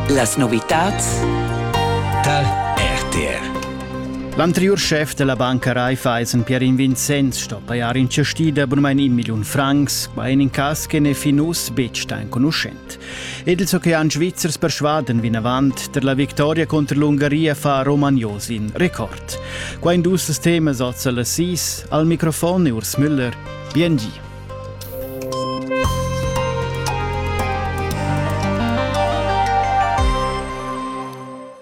Las novitads da RTR L'anteriur chef della banca Raiffeisen Pierin Vincenz sto pajar in cestida bunmein in million francs, quai in cas che ne fin uss betg sta enconuschent. Ed ils ocean svizzers persuaden vinavant der la victoria contro l'Ungaria fa Romagnos in record. Qua in dus temas oz al Assis, al microfon e Urs Müller. Bien gi.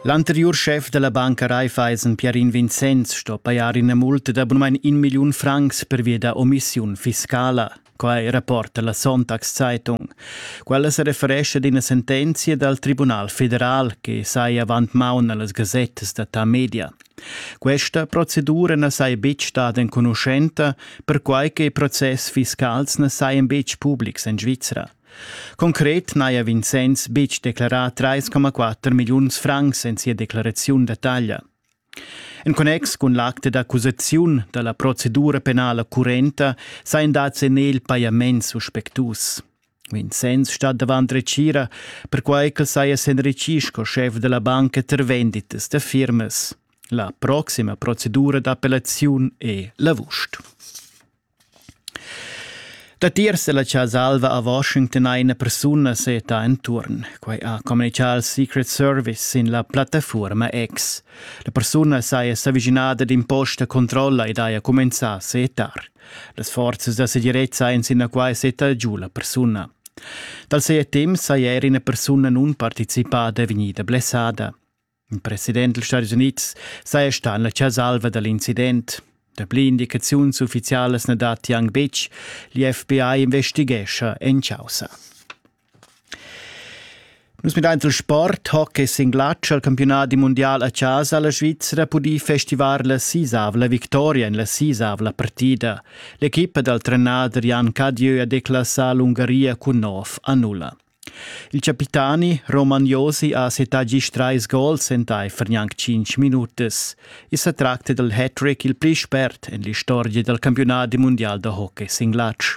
L'anteriur schef della Banca Raiffeisen Pierin Vincenz sto pajar ina multa da bunamein in milliun francs per via da omissiun fiscala. Quai rapporta la Sonntagszeitung. Quella se referesce ad ina sentenzia dal Tribunal federal che sai avant maun allas gazettas da ta media. Questa procedura na saja betg stada enconuschenta, perquai che process fiscals na sajan betg publics en Svizra. Concret n'haja Vincenz betg declarà 3,4 milliuns francs en sia declaraziun da taglia. En connex cun l'acte d'accusaziun da la procedura penala currenta sajan dads en el pajaments suspectus. Vincenz stat davant retgira, perquai ch'el saja s'enritgì sco schef da la banca tar venditas da firmas. La proxima procedura d'appellaziun è l'avust. Datiers della Casa Alva a Washington ha ina persuna seta enturn. Quai ha communicà al Secret Service in la plattaforma X. La persuna saja s'avvicinada d'imposta controlla ed haja cumenzà a setar. Las forzas da segirezza ein sinaquai setta giu la persuna. Dal seie temps sei er ina persuna nun participada vegnida blessada. Il president dels Stati Units sei sta en la chasalva dall'incident. Dapli indicaziuns ufficialas na datti anc betg. L'FBI investighescha en causa. Nus midain il sport, hockey sin glatsch al campiunat mundial a casa la Svizra pudì festivar la sisavla victoria en la sisavla partida. L'equipa dal trenader Jan Cadieu ha declassà l'Ungaria cun nov a nulla. Il capitani Roman Josi ha settà gist trais gols entaifer gnanc cinc minutas. I sa tracta dal hat-trick il pli spert en l'istorgia dal campiunat mundial da hockey sin glatsch.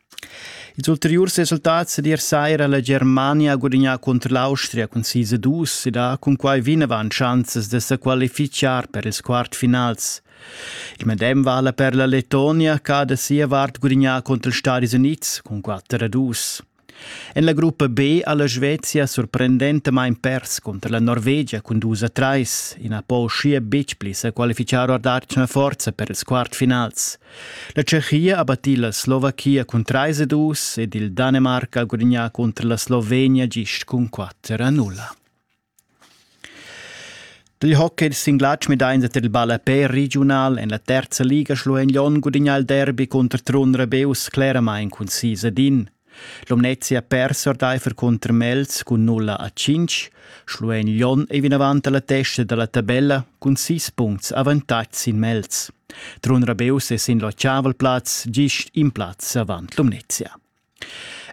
Ils ulteriurs resultats d'ier saira ha la Germania gudignà cunter l'Austria cun sis a dus ed ha cunquai vinavant schanzas da sa qualifichar per ils quartfinals. Il medem vala per la Letonia che ha da sia vart gudignà cunter ils Stadis Unids cun quatter a dus. En la gruppa B ha la Svezia sorprendentamain pers cunter la Norvegia cun dus a trais. I na po uschia betg pli sa qualifichar or d'atgna forza per ils quartfinals. La Tschechia ha battì la Slovachia cun trais e dus ed il Danemarc ha gudagnà cunter la Slovenia gist cun quatter a nulla. Dil hockey ils singlatgs medains tar il ballapè regiunal en la terza liga schluein Lyon gudagnà il derby cunter Trun Rebeus claramain cun sis ad in. L'Omnezia persa ordaifer cunter Mels cun nulla a 5, Schluein Lyon ei vinavant alla testa dalla tabella cun 6 puncts avantatg sin Mels. Trun Rabeus è sin l'occiaval plaz gist in plaz avant l'Omnezia.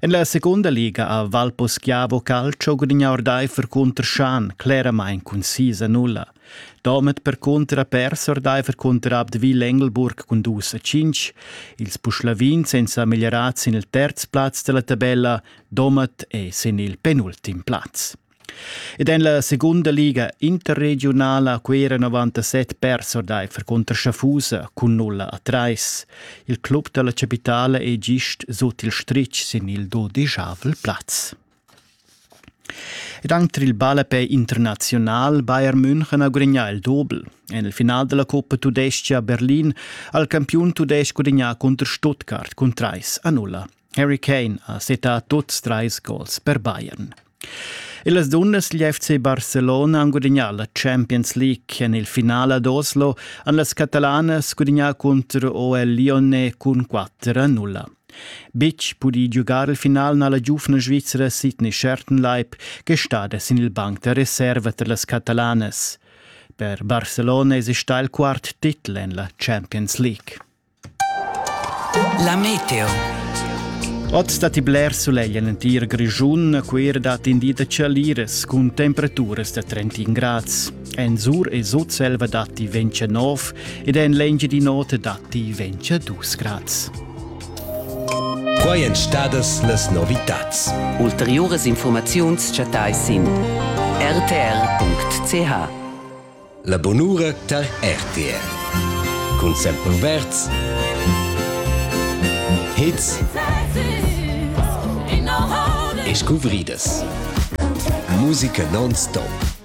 En la seconda liga a Valposchiavo Calcio gudigna ordaifer cunter Schan claramain cun 6 a 0. Domat percunter ha pers ordeifer cunterab de Vil Engelburg cun dus a tschintg, ils Puschlavins ein sa meglierats sin il terz plaz dalla tabella, Domat è sin il penultim plaz. Ed en la segunda liga interregionala ha Cuera 97 pers ordeifer cunter Schaffhausa cun 0 a 3. Il club dalla capitala è gist sut il stritg sin il dodijavel plaz. Ed anc tar il ballapè internaziunal Bayern München ha gudagnà il Dobel. En il final della Coppa Tudescha Berlin ha il campiun tudestg gudagnà cunter Stuttgart cun 3 a 0. Harry Kane ha setà tuts trais gols per Bayern. Las dunnas degl FC Barcelona han gudagnà la Champions League. En il finale ad Oslo han las catalanas gudagnà contro OL Lione cun 4 a 0. Bitg pudi giugar il final na la giuvna Svizra Sidney Schertenleib che stada sin il banc da reserva tar las catalanas. Per Barcelona esista il quart titel en la Champions League. La meteo. Oz datti bler sulegl en l'entir Grischun, a Cuira datti in di da chaliras cun temperaturas da 31 grads. En sur e sutselva datti 29 ed en l'Engiadin'Ota datti 22 grads. Quai èn stadas las novitads. Ulteriuras informaziuns chattais sin rtr.ch. La bonura tar RTR. Cun Sempre Verz. Hits e scuvridas. Musica non-stop.